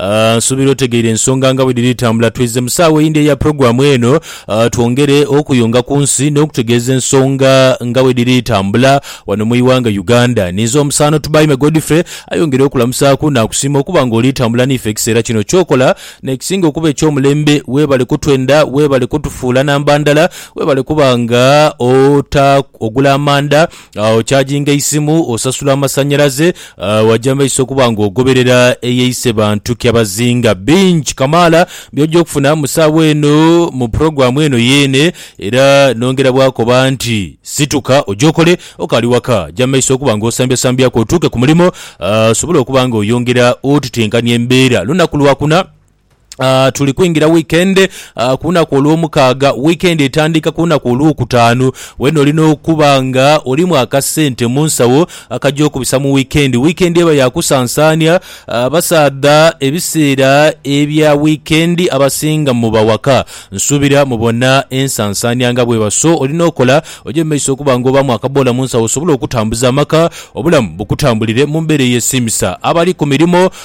Aah nsuubira otegeire ensonga nga bwe dhiri tambula. Twidhze mu saawa eyindi eya pulogulaamu eno twongere okuyunga ku nsi n'okutegeeza ensonga nga bwe dhiri tambula wano mu ighanga Uganda. Ninze omusaano Tubaime Godfrey ayongera okulamusaaku naakusiima okuba nga oli tambula n'ife ekiseera kino. Ky'okola n'ekisinga okuba eky'omulembe weebale kutwenda, weebale kutufuula namba ndala, weebale kuba nga ota, ogula amanda Ochaginga eisimu, osasula amasanhalaze, waja mu maiso okuba ng'ogoberera eyeise bantu kyabazinga. Bingi kamaala by'oja okufuna mu sawa eno mu pulogulaamu eno yeene era nongera bwakoba nti situka oje okole okaali waka. Ja mu maiso okuba ng'osambyasambyaku otuuke ku mulimo osobole okuba ng'oyongera otutenkania embeera. Lunaku Lwakuna. Uh, tuli kwingira weekend uh, ku lunaku olw'omukaaga weekend etandika ku lunaku olw'okutaanu wena olina okuba nga olimu akasente mu nsawo akajja okubisa mu weekend weekend eba yakusansaania uh, abasaadha ebiseera ebya weekend abasinga mu bawaka nsuubira mubona ensansaania nga bweba so olina okola oje mu maiso okuba nga obamu akaboola mu nsawo osobole okutambuza amaka obulamu bukutambulire mu mbeera eyesiimisa abali ku mirimu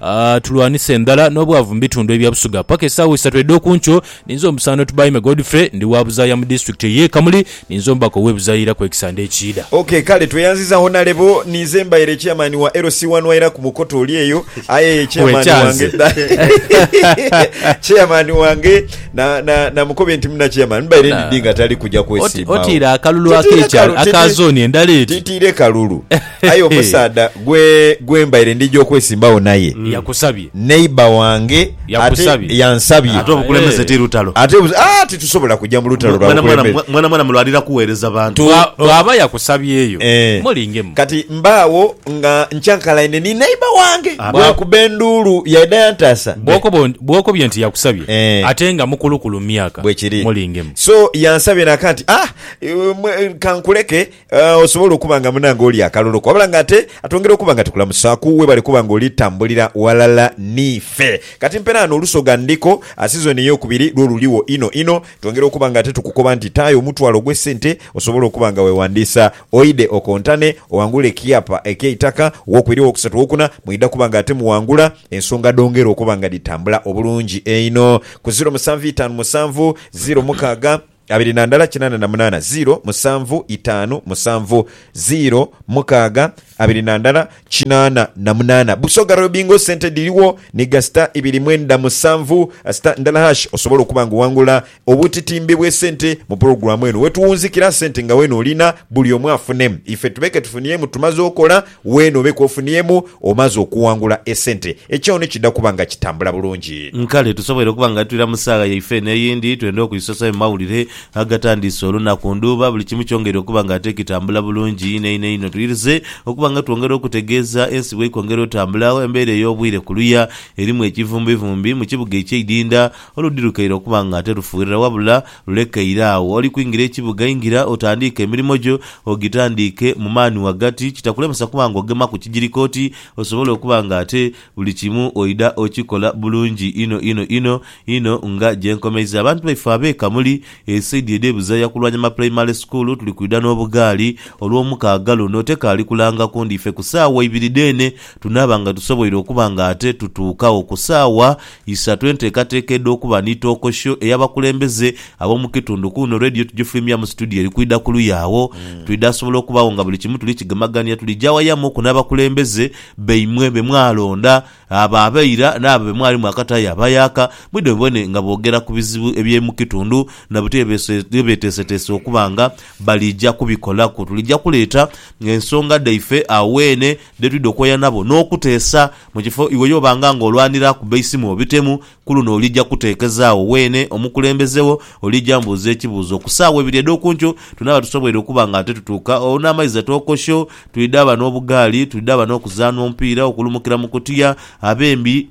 A. Tulwanise endhala n'obwavu mu bitundu ebya Busoga paka esaawa isatu edh'oku nkyo. Ninze Omusaandha Tubaime Godfrey, ndi wa Buzaaya mu Disitulikiti ey'e Kamuli. Ninze Omubaka ow'e Buzaaya ira ku ekisande ekiidha. OK, kale tweyanziza Honalebo. Ninze mbaire Chairman wa LC wanu aira ku Bukoto oli eyo. Aye ye Chairman wange Wekyanze. dha. Chairman wange na, na, namukobe nti muna Chairman mbaire Nah. ndidhi nga tali kuja Oti, kwesimbawo. otiire akalulu Titiire ak'ekyalo, kalu- aka titi- zooni endala eri. Titiire kalulu. Aye omusaadha gwe gwe mbaire ndija okwesimbagho naye Yakusabye. neighbour wange ate Yakusabye. yansabye Ate obukulembeze ti lutalo. ate obu- ah, titusobola kugya mu lutalo lwa Mwana mwana bukulembeze. mwana mwana mulwanira kuweereza bantu. Tu- Bwa- Bwaba yakusabyeyo Eh. mulingemu. kati mbaagho nga nkyankalaine ni neighbour wange Abe. bwakuba enduulu yaidha yantaasa Bwokoba on- bwokobye nti yakusabye Eh. ate nga mukulukulu mu myaka bwekiri mulingemu. so yansabye naka nti ah, eh, mwe- kankuleke Osobola okuba nga munange oli akaloloku wabula nga ate atwongera okuba nga tukulamusaaku. Webale kuba nga oli tambulira walala niife. Kati mperaano olusoga ndhiko, sizoni eyokubiri lwo luligho inho inho. Twongera okuba nga ate tukukoba nti taayo omutwalo gwe sente osobole okuba nga wewandiisa oidhe okontane owangule ekiapa ekyeitaka owokubiri, owokusatu, owokuna mwidha kuba nga ate muwangula ensonga dhongera okuba nga dhitambula obulungi einho ku ziro musanvu itaanu musanvu ziro mukaaga. Abiri na ndala kinana na munana ziro musanvu itanu musanvu ziro mukaga abiri na ndala kinana na munana Busoga Royal Bingo sente dhiriwo ni ga sita ibiri mwenda musanvu sita ndala hash Osobola okuba nga owangula obutitimbe bwe sente mu pulogulamu eno wetuwunzikira sente nga wena olina buli omu afune ife tubeke tufuniemu tumaze okola Weene obe k'ofuniemu omaze okuwangula esente, ekyoono kidha kuba nga kitambula bulungi. Nkale tusoboire okuba nga tuira mu saagha yaife eno eyindi, twende okuisosayo mu mawulire agatandiise olunaku ndhuuba buli kimu kyongeire okuba nga ate kitambula bulungi inho inho inho. Tuwirize okuba nga twongera okutegeeza ensi bweikwongera otambula agho embeera ey'obwire kuluya erimu ekivumbivumbi mu kibuga ekyeidinda oludhirukaire okuba nga ate lufuirira wabula Lulekeire agho oli kwingira ekibuga, ingira otandiike emirimo gyo, ogitandiike mu maani ghagati, kitakulemesa kuba nga ogemaku kigiriko oti osobole okuba nga ate buli kimu oidha okikola bulungi inho inho inho inho nga gye nkomeiza abantu baife ab'e Kamuli esaidi edh'e Buzaya ku Lwanyama Pulayimale Sukuulu tuli kwidha n'obugaali Olwomukaaga luno tekaali kulanga kundi ife ku saawa ibiri dheene tunaaba nga tusoboire okuba nga ate tutuukagho ku saawa Isatu, Enteekateeka edh'okuba ni Tookosho ey'abakulembeze ab'omu kitundu ku luno Radio Tugifulumyamu situdiyo eri kwidha ku luya agho. Twidha sobola okubaagho nga buli kimu tuli kigemagania tulija awayamuku n'abakulembeze baimwe be mwalonda, abo aba ira n'abo be mwali mwakataayo aba yaaka, mwidhe mubone nga boogera ku bizibu eby'omu kitundu na buti bye beeteeseteese okuba nga balija kubikolaku. Tulija kuleeta ensonga dhaife agho weene dhe twidha okwoya nabo n'okuteesa. Mu kifo iwe y'obanga ng'olwanira ku beisimu obitemu, ku luno olija kuteekezaagho weene omukulembeze wo. Olija mbuuza ekibuuzo ku saawa ibiri edh'oku nkyo. Tunaaba tusoboire okuba nga titutuuka olwo n'amaizi atookosho. Twidhaba n'obugaali. Twidhaba n'okuzaanha omupiira, okulumukira mu kutiya, abembi,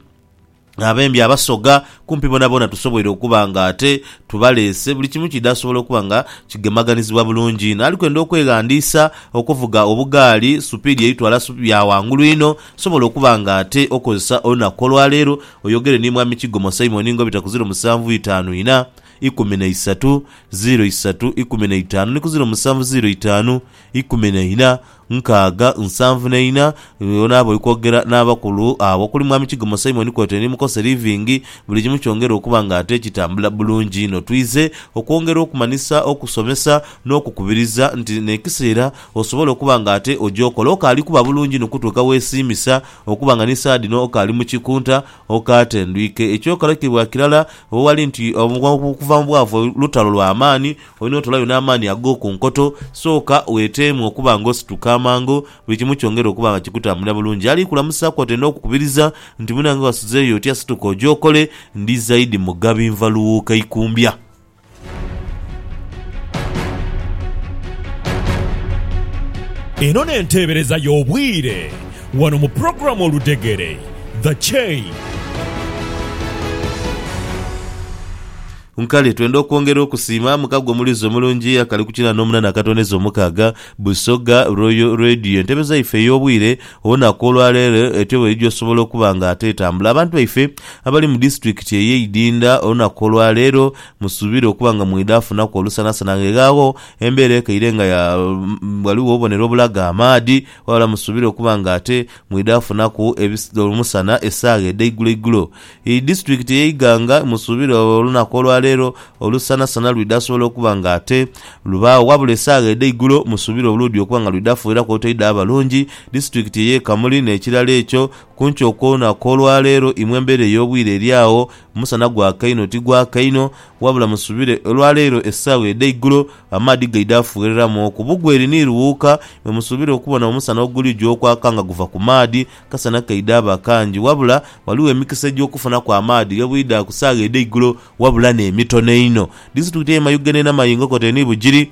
abembi abasoga, kumpi boonaboona tusoboire okuba nga ate tubaleese. Buli kimu kiidha sobola okuba nga kigemaganizibwa bulungi inho. Ali kwenda okweghandiisa okuvuga obugaali, supiidi eyitwala sup, ya ghangulu inho. Nsobola okuba nga ate okozesa olunaku olwaleero oyogere ni Mwami Kigomo Simon nga obita ku ziro musanvu itaanu ina, ikumi na isatu, ziro isatu, ikumi na itaanu ni ku ziro musanvu ziro itaanu, ikumi na ina, nkaaga, nsanvu na ina. Onaaba oli kwogera n'abakulu abo okuli Mwami Kigomo Simon kwotaire ni Mukose Living, buli kimu kyongere okuba nga ate kitambula bulungi inho. Twize okwongera okumanhisa, okusomesa n'okukubiriza nti n'ekiseera Osobole okuba nga ate ogyokola okaali kuba bulungi inho okutuuka wesiimisa okuba nga ni saagha dhino okaali mu kikunta, okaatendwike. Ekyokalakibwa kirala ghali nti okuva mu bwavu lutalo lwa maani, olina otoolayo n'amaani ag'oku nkoto. Sooka weteemu okuba nga osituka amangu, buli kimu kyongere okuba nga kikutambulira bulungi. Ali kulamusaaku atenda okukubiriza nti, Munange wasuzeeyo otya? Situka ogyokole, ndi zaidi Mugabi Nvalughuka Ikumbya. Eno n'enteebereza y'obwire wano mu pulogulaamu Oludhegere, The Chain. Nkale twenda okwongera okusiima mukago omuliizi omulungi akali ku kinaana omunana akatondeza omukaaga, Busoga Royal Radio. Entebeza yaife ey'obwire Olunaku olwa leero etyo bweidhi osobola okuba nga ate etambula. Abantu baife abali mu disitulikiti eye Idinda olunaku olwa leero musuubire okuba nga mweidha funaku olusanasana nga eghaagho embeera ekaire nga ya ghaligho obubonero obulaga amaadhi ghabula musuubire okuba nga ate mweidha funaku omusana esaawa edheigulo igulo. Eri disitulikiti eye Iganga emusuubira olunaku olwaleero olusanasana lwidha sobola okuba nga ate lubaagho wabula esaagha edheigulo musuubira obulwdhi okuba nga lwidha fuiraku otoidha abalungi disitulikiti eye Kamuli nekirala ekyo kunkyo okwonaku olwaleero imwe embera eyobwire eryaagho omusana gwaka inho tigwaka inho wabula musuubira olwaleero esaagha edheigulo amaadhi gaidha fuiriramu oku bugweri ni lughuuka mwemusuubira okubona omusana oguligya okwaka nga guva kumaadhi Akasana kaidha aba kangi, wabula ghaligho emikisa egy'okufunaku amaadhi ghe bwidha ku saagha edh'eigulo wabula n'emitono einho. Disitulikiti y'e Mayuge n'e Namayingokote ni Bugiri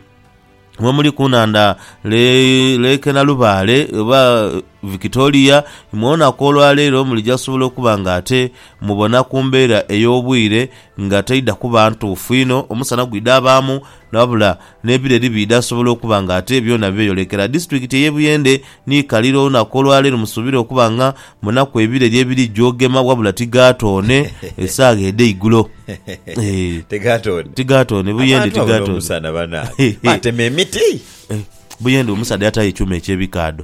mwe muli ku nhandha Lake Nalubaale oba Victoria. Mwoonaku olwaleero mulija kusobola okuba nga ate mubona ku mbeera ey'obwire Nga taidha kuba ntuufu inho, omusana gwidha abaamu, wabula n'ebireri biidha sobola okuba nga ate byona byeyolekera. Disitulikiti ey'e Buyende ni kalira olunaku olwaleero musuubire okuba nga munaku ebireri ebiri gyogema wabula tigaatoone esaagha edheigulo. Tigaatoone. Buyende tigaatoone. Buyende omusaadha yataayo ekyuma eky'ebikaadho.